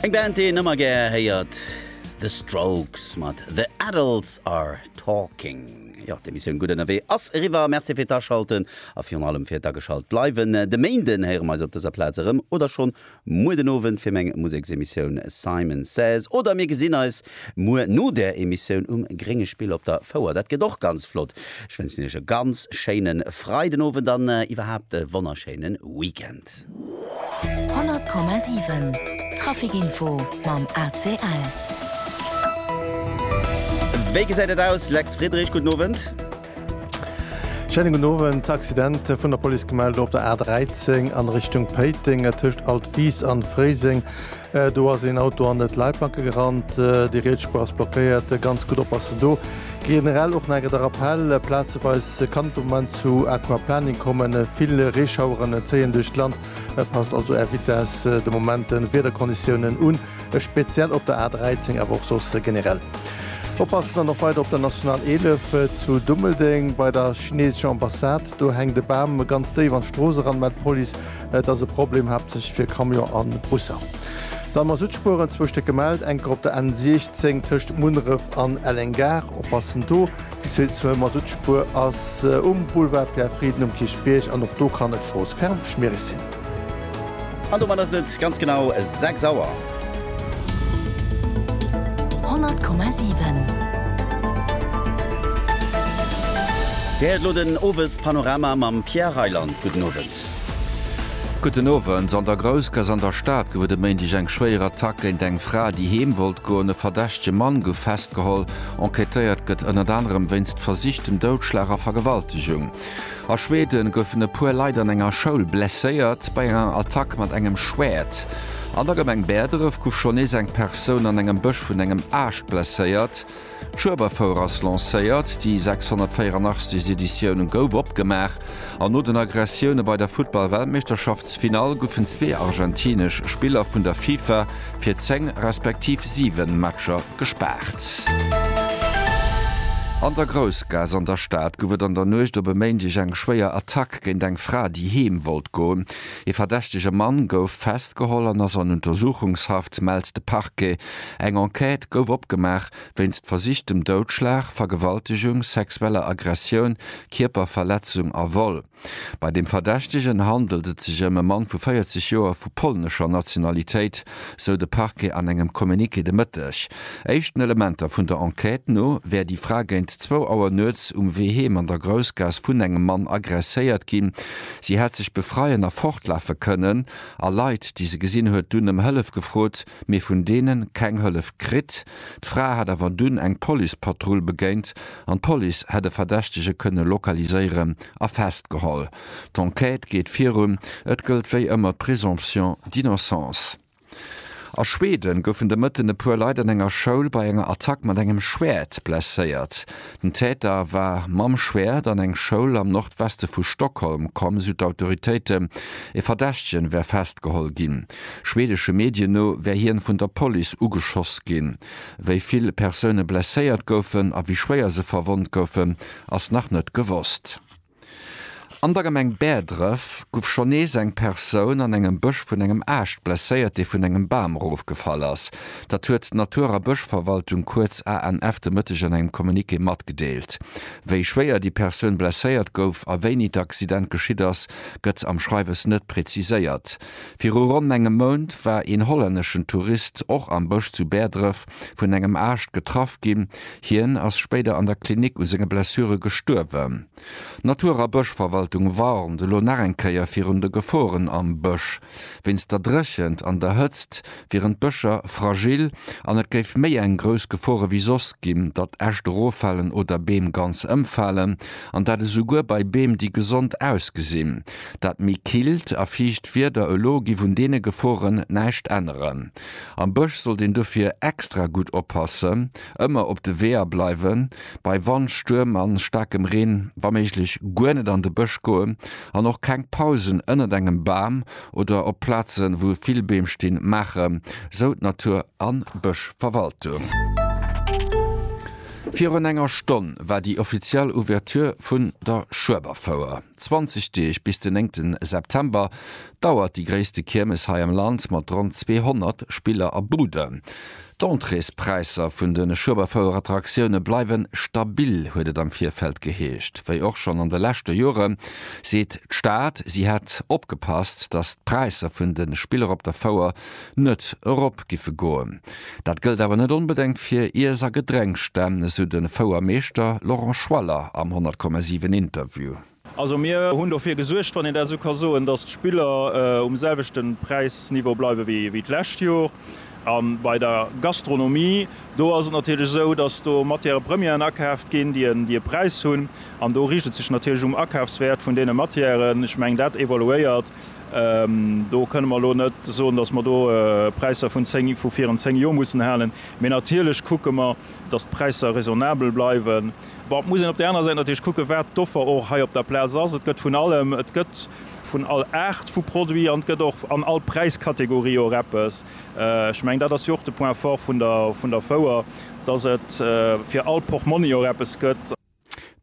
Eng Band déi een ëmmer gär héiert, The Strokes mat The Adults Are Talking. Jo, d'Emissioun Gutt Ënnerwee ass eriwwer. Merci fir d'Aschalten a virun allem fir d'Ageschalt bleiwen. De Méinden héiere mer eis op dëser Plaz erëm, oder schonn muer den Owend fir meng Museksemissioun Simon Says. Oder mir gesinn eis muer no der Emissioun um Grénge Spill op der Fouer. Dat gëtt och ganz flott. Ech wënschen Iech e ganz schéine Freidenowend an iwwerhaapt e wonnerschéine Weekend. Welt. 100,7 Traficinfo mam ACL. Wéi gesäit et aus, Lex Friedrich? Gudden Owend. Schéinen gudden Owend. Accident vun der Police gemellt op der A 13 an Richtung Péiteng tëscht Altwies an Fréiseng. Do ass een Auto an et Leitplanke gerannt. Déi riets Spuer ass blockéiert. Ganz gutt oppassen do. Generell och nach eng Kéier de Rappell, Plazeweis kann et de Moment zu Aquaplaning kommen. Vill Reeschaueren zéien duerch d'Land. Passt also Är Vitess de Moment de Wiederkonditiounen un, speziell op der A 13, awer och soss generell oppassen. An och weider op der National 11 zu Dummeldeng bei der chineesescher Ambassad. Do hänkt e Bam ganz déif an d'Strooss eran, mellt d'Police. Et ass e Problem haaptsächlech fir Camion a Busser. Dann Masuttspueren, zwou Stéck gemellt, enker op der N 16 tëscht Munneref an Elleng-Gare. Oppassen do, déi zweet Masuttspur ass um Boulevard Pierre Frieden um Kierchbierg an och do kann et stroossferm schmiereg sinn. An domat ass et ganz genau 6 Auer. 100,7. Dir héiert elo den Owespanorama mam Pierre Reyland. Gudden Owend. Gudden Owend. An der Groussgaass an der Stad gouf et e Méindeg eng schwéier Attack géint eng Fra, déi heem wollt goen. E verdächtege Mann gouf festgeholl. Enquêtéiert gëtt ënnert anerem wéinst versichtem Doudschlag a Vergewaltegung. A Schweden goufen e puer Leit an enger Schoul blesséiert bei enger Attack mat engem Schwäert. An der Gemeng Bäerdref gouf schonn nees eng Persoun an engem Bësch vun engem Aascht blesséiert. D'Schueberfouer ass lancéiert, déi 684. Editioun gouf opgemaach an no den Aggressioune bei der Futtball-Weltmeeschterschaftsfinall goufen zwee argentinesch Spiller vun der FIFA fir 10 respektiv 7 Matcher gespaart. An der Groussgaass an der Stad gouf et an der Nuecht op e Méindeg eng schwéier Attack géint eng Fra, déi heem wollt goen. Ee verdächtege Mann gouf festgeholl an ass an Untersuchungshaft, mellt de Parquet. Eng Enquête gouf opgemaach wéinst versichtem Doudschlag, Vergewaltegung, sexueller Aggressioun, Kierperverletzung a Vol. Bei dem Verdächtegen handelt et sech ëm e Mann vu 40 Joer vu polnescher Nationalitéit, sou de Parquet an engem Communiqué de Mëtteg. Éischten Elementer vun der Enquête no wär déi Fra géint zwou Auer nuets um Wee heem an der Groussgaass vun engem Mann agresséiert ginn. Si hätt sech befreien a fortlafe kënnen a Leit, déi se gesinn huet, dunn ëm Hëllef gefrot. mee vun deene keng Hëllef kritt. D'Fra hätt awer dunn eng Policepatrull begéint an d'Police hätt e Verdächtege kënne lokaliséieren a festgeholl. D'Enquête geet virun, et gëllt wéi ëmmer d'Présomption d'innocence. A Schweden goufen de Mëtten e puer Leit an enger Schoul bei enger Attack mat engem Schwäert blesséiert. Den Täter war mam Schwäert an eng Schoul am Nordweste vu Stockholm komm, sou d'Autoritéiten. E Verdächtegen wär festgeholl ginn. Schwedesche Medien no wär hien vun der Police ugeschoss ginn. Wéi vill Persoune blesséiert goufen a wéi schwéier se verwonnt goufen, ass nach net gewosst. An der Gemeng Bäerdref guff schonn nees eng Persoun an engem Bësch vun engem Aascht blesséiert, dee vun engem Bam erofgefall ass. Dat huet d'Natur a Bëschverwaltung, kuerz ANF, de Mëtteg an engem Communiqué matgedeelt. Wéi schwéier déi Persoun blesséiert gouf a wéini d'Accident geschitt ass, gëtt am Schreiwes net preziséiert. Viru ronn engem Mount war een hollänneschen Tourist och am Bësch zu Bäerdref vun engem Aascht getraff ginn. Hien ass spéider an der Klinik u senge Blessure gestuerwen. D'Natur a Bëschverwaltung warnt elo nach eng Kéier virun de Geforen am Bësch. Wéinst der Dréchent an der Hëtzt wieren d'Bëscher fragil an et géif méi eng grouss Gefor ewéi soss ginn, datt Äscht eroffalen oder Beem ganz ëmfalen, an dat esouguer bei Beem, déi gesond ausgesinn. Dat méi killt a fiicht Wieder elo giff un deene Geforen näischt änneren. Am Bësch sollt een dofir extra gutt oppassen, ëmmer op de Weeër bleiwen, bei Wand, Stuerm a staarkem Reen wa méiglech guer net an de Bësch goen an och keng Pausen ënnert engem Bam oder op Plazen, wou vill Beem stinn, maachen, sou d'Natur a Bëschverwaltung. Virun enger Stonn war déi offiziell Ouverture vun der Schueberfouer. 20 Deeg, bis den 9 September, dauert déi gréisste Kiermes hei am Land mat ronn 200 Spiller a Buden. D'Entréespräisser vun de Schueberfouerattraktioune bleiwe stabil, huet et am Virfeld geheescht. Wéi och schonn an de leschte Jore seet d'Stad, si hätt opgepasst, datt d'Präisser vun de Spiller op der Fouer net erop giffe goen. Dat gëllt awer net onbedengt fir Iess a Gedrénksstänn, esou de Fouermeeschter Laurent Schwaller am 100,7 Interview. Also mir hunn dofir gesuergt, wann een dat esou ka soen, datt d'Spiller um selwechte Präisniveau bleiwe wéi d'lescht Jor. A bei der Gastronomie, do ass et natierlech esou, datt do Matière premièren akaaft ginn, déi e Präis hunn. An do riicht et sech natierlech um Akaafswäert vun deene Matièren. Ech mengen, dat evoluéiert. Do kënne mer elo net soen, datt mer do Präisser vun virun zéng Jor mussen halen. Mee natierlech kucke mer, datt d'Präisser raisonnabel bleiwen. Bon, et muss een op där anerer Säit natierlech kucken, wat d'Offer och hei op der Plaz ass. Et gëtt vun allem, et gëtt vun all Aart vu Produit an et gëtt och an all Präiskategorie och eppes. Ech mengen, dat ass jo och de Point fort vun der Fouer, dass et fir all Portmonni och eppes gëtt.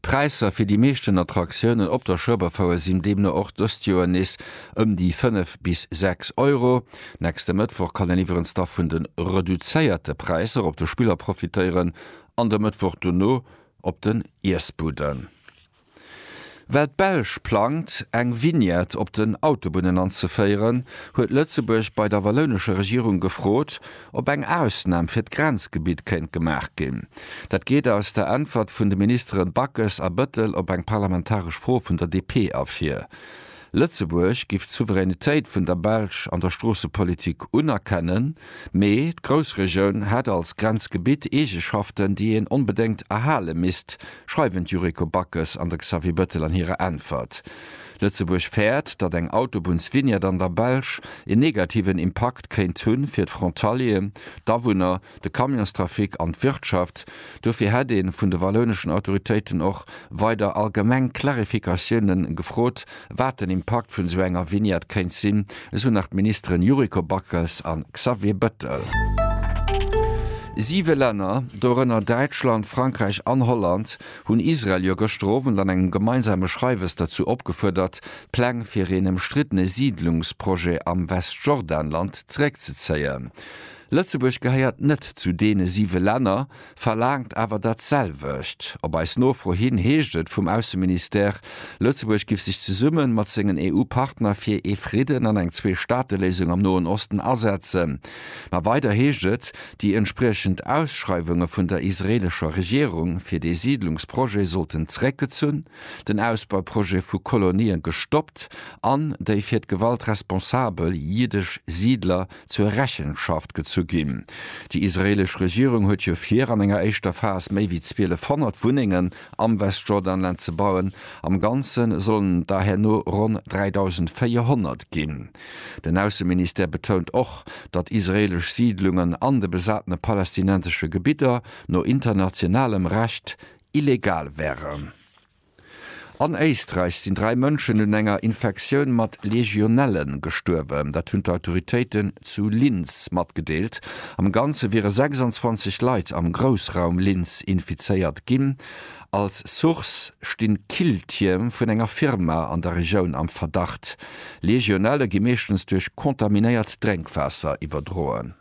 D'Präisser fir déi meeschten Attraktiounen op der Schueberfouer sinn deemno och dëst Joer nees ëm déi 5 bis 6 Euro. Nächste Mëttwoch kann een iwwerens da vun de reduzéierte Präisser op de Spiller profitéieren an de Mëttwoch dono op den Iessbudden. Well d'Belsch plangt, eng Vignette op den Autobunnen anzeféieren, huet Lëtzebuerg bei der wallounescher Regierung gefrot, ob eng Ausnam fir d'Grenzgebitt kéint gemaach ginn. Dat geet aus der Äntwert vun de Ministere Backes a Bettel op eng parlamentaresch Fro vun der DP ervir. Lëtzebuerg giff d'Souveränitéit vun der Belsch an der Stroossepolitik unerkennen, mee d'Groussregioun hätt als Grenzgebitt Eegeschaften, déi een onbedéngt erhale misst, schreiwen d'Yuriko Backes an de Xavier Bettel an hirer Äntwert. Lëtzebuerg fäert, datt eng Autobunnsvignette an der Belsch een negativen Impakt kéint hu fir d'Frontalieren, d'Awunner, de Camionstrafic an d'Wirtschaft. Dofir hätt ee vun de wallouneschen Autoritéiten och weider allgemeng Clarificatioune gefrot, wat den Impakt vun esou enger Vignette kéint sinn, esou nach d'Ministeren Yuriko Backes a Xavier Bettel. Siwe Länner, dorënner Däitschland, Frankräich an Holland, hunn Israel jo gëschter Owend an engem gemeinsame Schreiwes derzou opgefuerdert, d'Pläng fir een ëmstriddene Siidlungsprojet am Westjordanland zeréckzezéien. Lëtzebuerg gehéiert net zu deene siwe Länner, verlaangt awer dat selwecht. Op eis Nofro hin heescht et vum Ausseministère, Lëtzebuerg giff sech zesumme mat sengen EU-Partner fir ee Fridden an eng Zwee-Staate-Léisung am Noen Osten asetzen. Ma weider heescht et, déi entspriechend Ausschreiwunge vun der israeelescher Regierung fir dee Siidlungsprojet sollten zeréckgezunn, den Ausbauprojet vu Kolonien gestoppt an déi fir d'Gewalt responsabel jiddesch Siidler, zur Rechenschaft gezu ginn. Déi israeelesch Regierung huet jo vir, an enger éischter Phas méi wéi 1200 Wunnengen am Westjordanland ze bauen. Am Ganze sollen et der herno ronn 3.400 ginn. Den Ausseministère betount och, datt israeelesch Siidlungen an de besatene palästinensesche Gebidder no internationalem Recht illegal wären. An Éisträich sinn dräi Mënschen un enger Infektioun mat Legionelle gestuerwen. Dat hunn d'Autoritéiten zu Linz matgedeelt. Am Ganze wiere 26 Leit am Groussraum Linz infizéiert ginn. Als Source sti Killtierm vun enger Firma an der Regioun am Verdacht. Legionelle gi meeschtens duerch kontaminéiert Drénkwaasser iwwerdroen.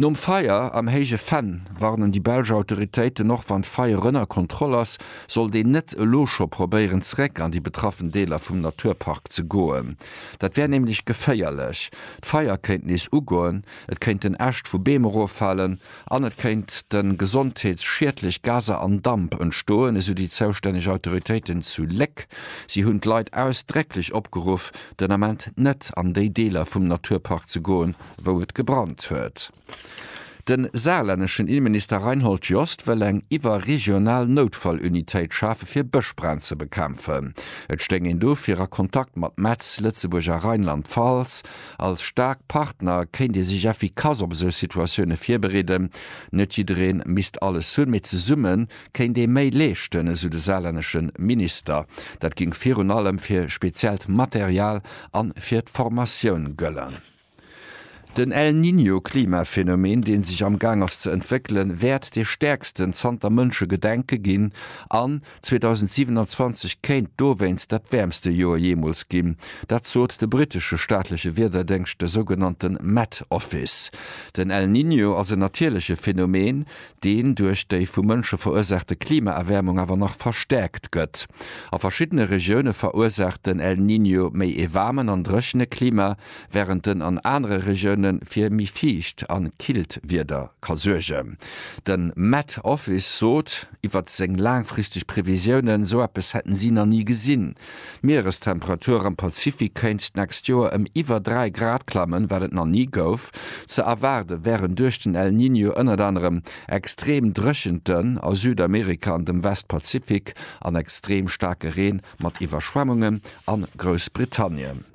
Nom Feier am Héije Venn warnen déi belsch Autoritéiten, och wann d'Feier ënner Kontroll ass, sollt een net elo scho probéieren zeréck an déi betraffen Deeler vum Naturpark ze goen. Dat wär nämlech geféierlech. D'Feier kéint nees ugoen, et kéinten Äscht vu Beem eroffalen an et kéinte gesondheetsschiedlech Gaser an Damp entstoen, esou déi zoustänneg Autoritéiten zu Léck. Si hunn d'Leit ausdrécklech opgeruff, den Ament net an déi Deeler vum Naturpark ze goen, wou et gebrannt huet. De saarlänneschen Innenminister Reinhold Jost wëll eng iwwerregional Noutfallunitéit schafe fir Bëschbränn ze bekämpfen. Et stéing een dofir a Kontakt mat Metz, Lëtzebuerg a Rheinland-Pfalz. Als staark Partner kéint ee sech effikass op esou Situatioune virbereeden. Net jidderee misst alles hunn, mee zesumme kéint ee méi leeschten, esou de saarlännesche Minister. Dat géing virun allem fir speziellt Material a fir d'Formatioun gëllen. Den El Niño Klimaphänomen, deen sech am Gaang ass ze entwéckelen, wäert dee stäerksten zanter Mënsche Gedenke ginn an 2027 kéint dowéinst dat wäermste Joer jeemools ginn. Dat sot de brittesche staatleche Wiederdéngscht, de sougenannte Met Office. Den El Niño ass en natierleche Phänomen, deen duerch déi vu Mënsche verursaachte Klimaerwäermung awer nach verstäerkt gëtt. A verschiddene Regioune verursaacht den El Niño méi ee waarmen an dréchene Klima, wärend en an anere Regioune fir méi fiicht a killt Wieder ka suergen. De Met Office sot iwwert seng laangfristeg Previsiounen, sou eppes hätten si nach ni gesinn. D'Mierestemperatur am Pazifik kéint d'nächst Joer ëm iwwer 3 Grad klammen, wat et nach ni gouf. Ze erwaarde wären duerch den El Niño ënnert anerem extreem Dréchenten a Südamerika an dem Westpazifik an extreem staarke Reen mat Iwwerschwemmungen a Groussbritannien.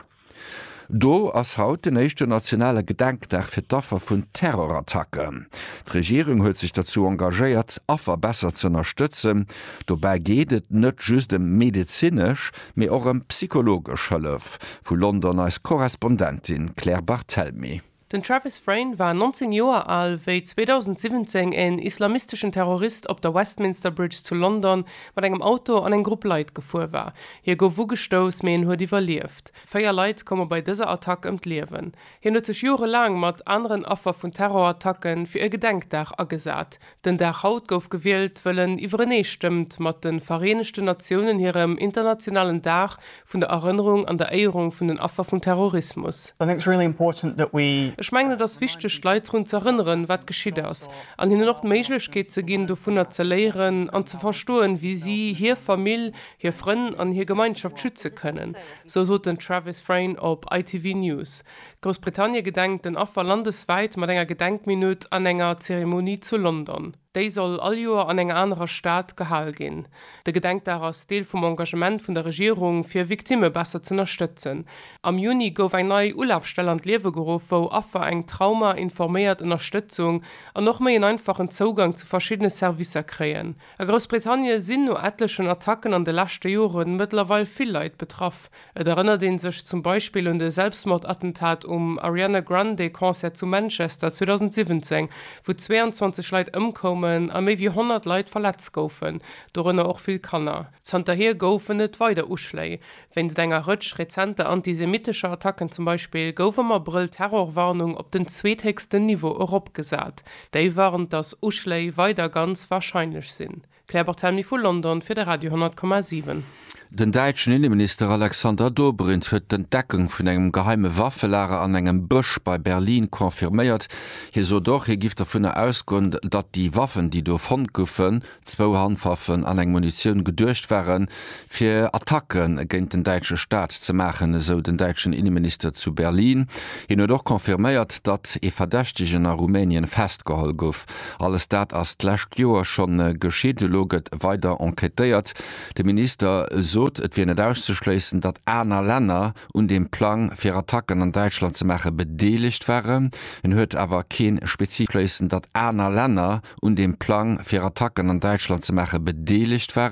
Do ass haut den éischten nationale Gedenkdag fir d'Affer vun Terrorattacken. D'Regierung huet sech derzou engagéiert, Affer besser ze ënnerstëtzen. Dobäi geet et net just ëm medezinesch, mee och ëm psychologesch Hëllef, vu London eis Korrespondentin Claire Barthelmy. Den Travis Frain war 19 Joer al, wéi 2017 en islamisteschen Terrorist op der Westminster Bridge zu London mat engem Auto an eng Grupp Leit gefuer war. Hie gouf ugestouss, mee en huet iwwerlieft. Véier Leit koume bei dëser Attack ëm d'Liewen. Hien huet sech jorelaang mat aneren Affer vun Terrorattacken fir e Gedenkdag agesat. Den Dag haut gouf gewielt, wëll en iwwerenee stëmmt mat de Vereenegten Natiounen hirem internationalen Dag vun der Erënnerung an der Éierung vun den Affer vum Terrorismus. Ech mengen et ass wichteg d'Leit drun ze erënneren, wat geschitt ass, an hinnen och d'Méiglechkeet ze ginn dovunner ze léieren an ze verstoen, wéi si hir Famill, hir Frënn an hir Gemeinschaft schütze kënnen, sou sot den Travis Frain op ITV News. Groussbritannie gedenkt den Affer landeswäit mat enger Gedenkminutt an enger Zeremonie zu London. Déi soll all Joer an enger anerer Stad gehal ginn. De Gedenkdag ass Deel vum Engagement vun der Regierung, fir Victimme besser z'ënnerstëtzen. Am Juni gouf eng nei Ulafstell an d'Liewe geruff, wou Affer eng Trauma informéiert Ënnerstëtzung an och méi en einfachen Zougang zu verschiddene Servicer kréien. A Groussbritannie sinn no etlechen Attacken an de leschte Joren mëttlerweil vill Leit betraff, Et erënnert een sech zum Beispill un de Selbstmordattentat um Ariana Grande Concert zu Manchester 2017, wou 22 Leit ëmkoumen a méi wéi 100 Leit verletzt goufen, dorënner och vill Kanner. Zanterhier goufen et weider Uschléi. Wéinst enger Rëtsch rezenter antisemitescher Attacken zum Beispill gouf am Abrëll d'Terrorwarnung op den zweethéchsten Niveau eropgesat. Déi warnt, datt Uschléi weider ganz warscheinlech sinn. Claire Barthelmy vu London fir de Radio 10,7. Den däitschen Inneminister Alexander Dobrindt huet d'Entdeckung vun engem geheime Waffelager an engem Bësch bei Berlin confirméiert. Hie sot och, hie giff dovunner ausgoen, datt déi Waffen, déi do fonnt goufen, zwou Handwaffen an eng Munitioun, geduecht waren, fir Attacke géint den däitsche Staat ze maachen, esou den däitschen Inneminister zu Berlin. Hien huet och confirméiert, datt ee Verdächtegen a Rumänien festgeholl gouf. Alles dat ass d'lescht Joer scho geschitt. Elo gëtt weider enquêtéiert. De Minister sot, et wier net auszeschléissen, datt aner Länner un deem Plang, fir Attacken an Däitschland ze maachen, bedeelegt waren. En huet awer kee spezifesche. Datt aner Länner un deem Plang, fir Attacken an Däitschland ze maachen, bedeelegt waren.